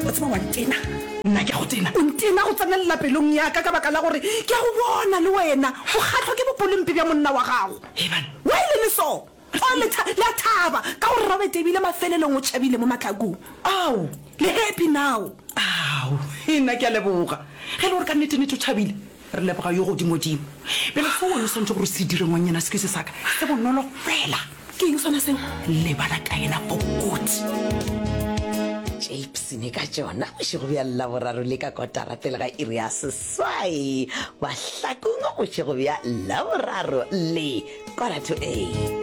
wa tseba wa ntena nna ke a go tena o ntena go tsenelela pelong yaka ka baka la gore ke a go bona le wena o kgatlhwa ke bopolompe bja monna wa gago wa e le le so o le a thaba ka gore robert ebile mafelelong o tšhabile mo matlakong ao le happy now ao e nna ke a leboga ge le gore ka nnete-nete o tšhabile Re leboga yo Godimodimo. Bjale seo wena o swanetše gore o se dire, ngwannyana, se ke se sa ka, se bonolo fela. Ke eng sona seo? Lebala ka yena bokotsi. Tšeipsene ka tšona bošego bja Laboraro le ka kotara pele ga iri ya seswai mahlakong bošego bja Laboraro le quarter to eight.